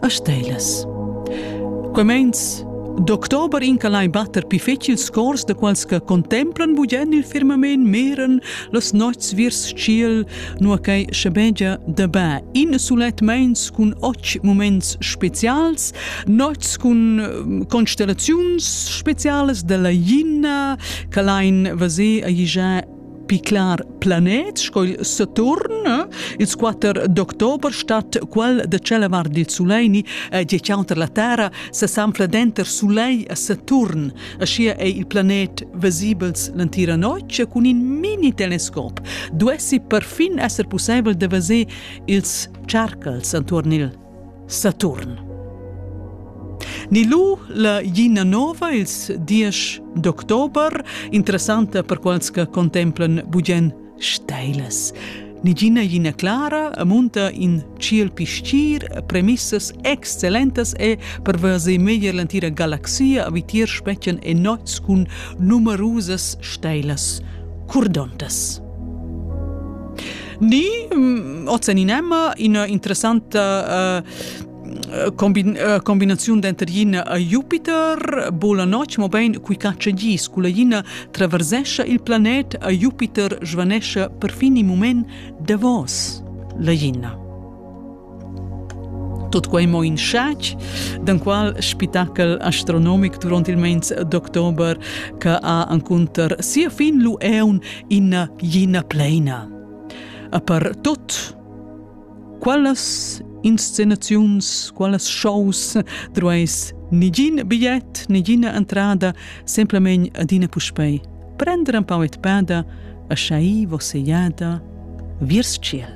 a Stelas. Quei meins D'october incalai batter pi fetg ils cors da quals che contemplan bugen il firmament miren las nots viers tschiel, nua che schebegia da ba in sulet meins cun oc moments specials, nots cun ehm, constellaziuns specialas dalla Jina, che lain vase a igià Piclar planet sco il Saturn, ils 4 d'october stat quel de cella var dil Suleini e die counter la Terra se sanfla denter Sulei e Saturn. Aschia ei il planet vesibels l'entira notg cun in mini telescop. Duessi perfin esser pusseivel de veser ils cercals antuorn il Saturn. Ni lu la Gina nova ils diesch d'october, interessanta per quals che contemplan bugen steilas. Ni Gina Gina Clara munta in ciel piscir, premissas excellentas e per veser meglier l'entira galaxia a vitier spetgan e nots cun numerusas steilas curdontas. ni mm, ozeninema ina interessanta uh, combin, uh, combinaziun denter ina a Jupiter bola notg mobein qui caccia gis cu la ina traversescha il planet a Jupiter svanescia perfin in moment davos la ina Tut quei mo in schatg, d'enqual spitachel astronomic duront il meins d'october che ha encunter sia fin lu eun ina gina pleina. E per tot, quallas inscenaziuns, quallas shows drueis nigin bigliet, nigina entrada, semplamein adina puspei prender un pau et peda, a schai vos jada viers ciel.